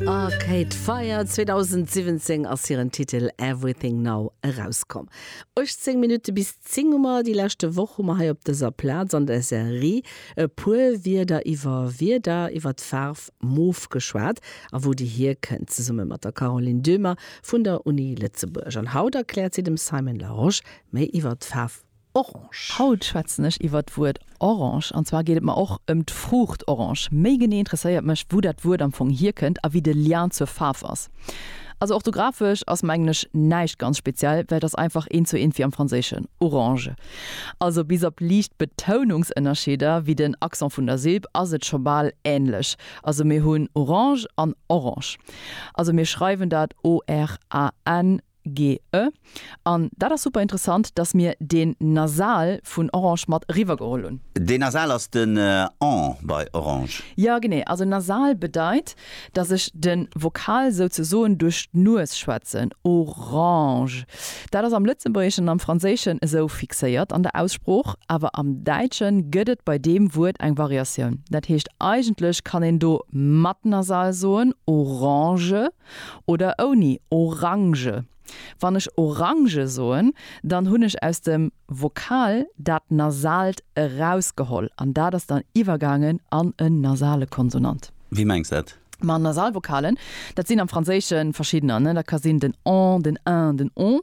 Arcade Fire 2017 ass hiren Titel Everything Now erauskomm. 18 Minutte bis 10 hu mer. Déi leschte Woch hu mer hei op dëser Plaz an der Serie e puer Wierder iwwer Wierder iwwer d'Faarf Mof geschwat a wou déi hierkënnt, zesumme mat der Caroline Döhmer vun der Uni Lëtzebuerg. An haut erkläert si dem Simon Larosche méi iwwer d'Faarf Orange. Haut schwätzen ech iwwert d'Wuert Orange an zwar geet et mer och ëm d'Fruucht Orange. Méi genee interesséiert mech wou dat Wuert am Fong hierkënnt a wéi de Lien zur Faarf ass. Also orthographesch ass mengen ech näischt ganz speziell, well et ass einfach eent zu eent wéi am Franséischen, orange. Also bis op liicht Betounungsënnerscheeder wéi den Accent vun der Silb ass et scho bal änlech. Also mir hunn Orange an Orange. Also mir schreiwen dat ORANGE. GE, An dat ass super interessant, dass mir deen Nasal vun Orange mat eriwwer geholl hunn. Deen Nasal ass den en bei Orange. Jo, genee. Also Nasal bedeit, dass ech de Vokal souzesoen duerch d'Nues schwätzen. Orange. Dat ass am Lëtzebuergeschen an am Franséischen esou fixéiert an der Aussprooch, awer am Däitsche gëtt et bei deem Wuert eng Variatioun. Dat heescht eigentlech kann een do mat Nasal soen, Orange. oder ouni Orange. Wann ech Orange soen, dann hunn ech aus dem Vokal dat Nasalt erausgeholl an dat ass dann iwwergaangen an en nasale Konsonant. Wéi mengs de dat? Ma Nasalvokalen, dat sinn am Franséische verschiddener, dat ka sinn den en, den en, den on.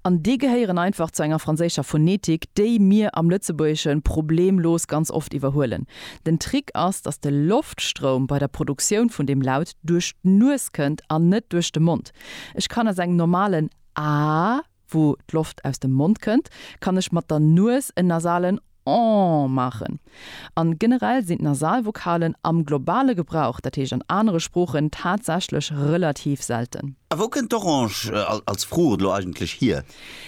An déi gehéieren einfach zu enger franséischer Phonetik, déi mir am Lëtzebuergesche problemlos ganz oft iwwerhuelen. Den Trick ass, datt de Loftstroum bei der Produktioun vun deem Laut duerch d'Nues kënnt an net duerch de Mond. Ech kann aus engem normalen Aah, wou d'Loft aus dem Mond kënnt, kann ech mat der Nues en nasalen Ohh maachen. An generell sinn d'Nasalvokalen am globale Gebrauch, dat heescht an anere Sproochen, tatsächlech relativ selten. A wou kënnt d'Orange als Fruucht elo eigentlech hier?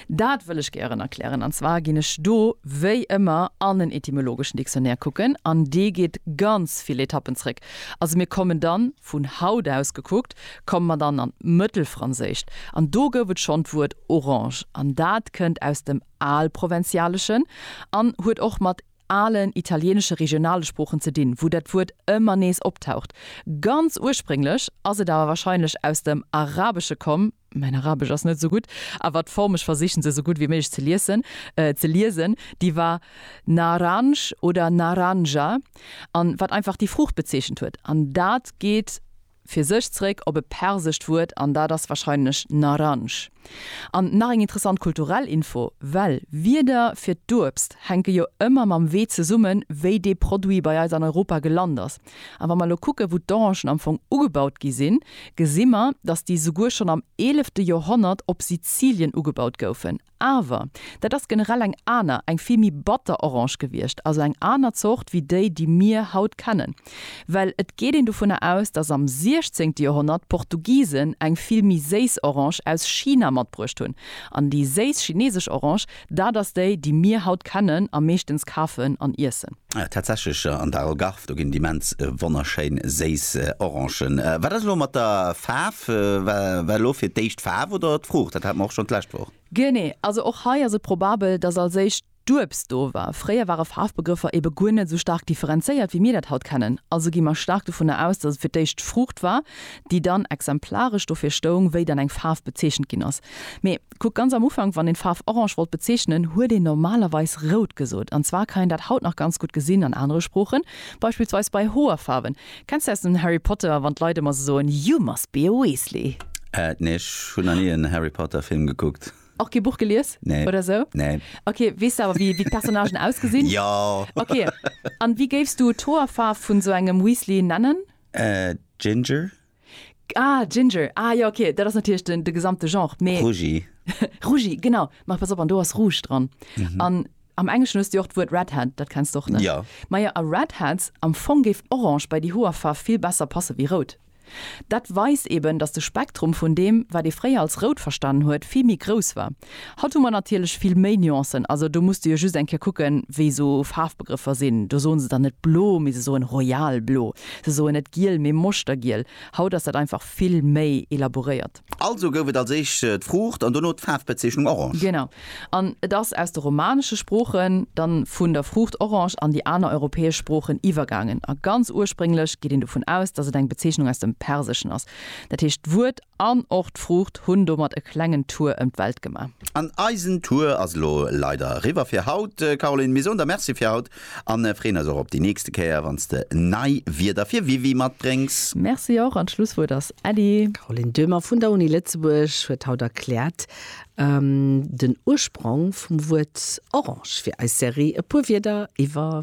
Dat wëll ech gären erklären. An zwar ginn ech do wéi ëmmer an en etymologeschen Dictionnaire kucken, an dee geet ganz vill Etappen zréck. Also mir kommen dann, vun haut aus gekuckt, komme mer dann an d'Mëttelfranséischt, an do gouf et schonn d'Wuert orange, an dat kënnt aus dem Alprovenzaleschen an huet och mat alen italieenesche regionale Sproochen ze dinn, wou dat Wuert ëmmer nees optaucht. Ganz ursprénglech ass et awer wahrscheinlech aus dem Arabesche komm. mäin Arabesch ass net esou gutt, awer d'Form, ech versichen se esou gutt wéi méiglech ze liessen, ze liesen, déi war Naranj oder Naranja an wat einfach déi Fruucht bezeechent huet. An dat geet fir sech zréck op e persescht Wuert an dat ass wahrscheinlech Naranj. An nach eng interessant kulturell Info, well Wierder fir d'Uebst hänke jo ëmmer mam Wee zesummen, wéi dee Produit bei eis an Europa gelant ass. An wa mer elo kucken, wou d'Orangen am Fong ugebaut gi sinn, gesi mer, dass déi souguer schonn am eelefte Joerhonnert op Sizilien ugebaut goufen. Awer dat ass generell eng aner, eng vill méi batter Orange gewiescht, also eng aner Zort wéi déi, déi mir haut kennen. Well et geet een dovunner aus, dass am siechzéngte Joerhonnert d'Portugisen eng vill méi séiss Orange aus China matbruecht hunn. An déi séiss chineesesch Orange, Dat ass déi, déi mir haut kennen a meeschtens kafen an iessen. Tatsächlech, an der Algarve, do ginn et immens wonnerschéin séiss Orangen. Wat ass elo mat der Faarf? War elo fir d'éischt d'Faarf oder d'Fruucht? Dat hate mer och schonn d'lescht Woch. Genee, also och hei ass et probabel, datt als éischt d'Uebst do war. Fréier ware Faarfbegrëffer ebe guer net esou staark differenzéiert, wéi mir dat haut kennen. Also gi mer staark dovunner aus, datt et fir d'éischt d'Fruucht war, déi dann exemplaresch dofir stoung, wéi dann eng Faarf bezeechent ginn ass. Mee. Kuck ganz am Ufank, wann een d'Faarf orange wollt bezeechnen, huet een normalerweis rout gesot. An zwar kann een dat haut nach ganz gutt gesinn an anere Sproochen, beispillsweis bei Hoerfaarwen. Kenns de aus dem Harry Potter, wann d'Leit ëmmer esou soen, You must be a Weasley? Äh, nee, ech hunn nach ni en Harry Potter Film gekuckt. Och kee Buch gelies Nee, oder esou? nee. Ok, weess de awer wéi d'Personnagen ausgesinn? Jo! Ok, an wéi géifs du d'Hoerfaarf vun esou engem Weasley nennen? Äh, Ginger. Ah, Ginger, ah jo, ok, dat ass natierlech den, de gesamte Genre, mee. Rougi. Rougi, genau. Mä pass op, an do ass Rouge dran. An am Engleschen hues de jo och d'Wuert Redhead, dat kenns de och, ne? Jo. Majo, a Redheads, am Fong géif Orange bei déi Hoerfaarf vill besser passe wéi Rout. Dat weist eben, dass de Spektrum vun deem, wat ee fréier als Rout verstanen huet, vill méi grouss war. Haut hu mer natierlech vill méi Nuancen. Also do muss de jo just eng Kéier kucken, wéi esou Faarfbegrëffer sinn. Do soen se dann net blo, mee se soen royal blo. Se soen net giel, mee moschtergiel. Haut ass dat einfach vill méi elaboréiert. Also gouf et als éischt d'Fruucht an dono d'Faarfbezeechnung orange. Genau. An et ass aus de romanesche Sproochen dann vun der Fruucht orange an déi aner europäesch Sproochen iwwergaangen. A ganz ursprénglech geet een dovun aus, dass et eng Bezeechnung aus dem Perseschen ass. Dat heescht, d'Wuert. An och d'Fruucht hunn domat e klengen Tour ëm d'Welt gemaach. An eisen Tour ass elo leider eriwwer fir haut, Caroline. Mir soen der Merci fir haut an freeën eis och op déi nächste Kéier, wann s de nei Wierder fir WiWi matbréngs. Merci och an d'Schlusswuert ass Elly. D'Caroline Döhmer vun der Uni Lëtzebuerg huet haut erkläert den Ursprong vum Wuert Orange. Fir eis Serie e puer Wierder iwwer.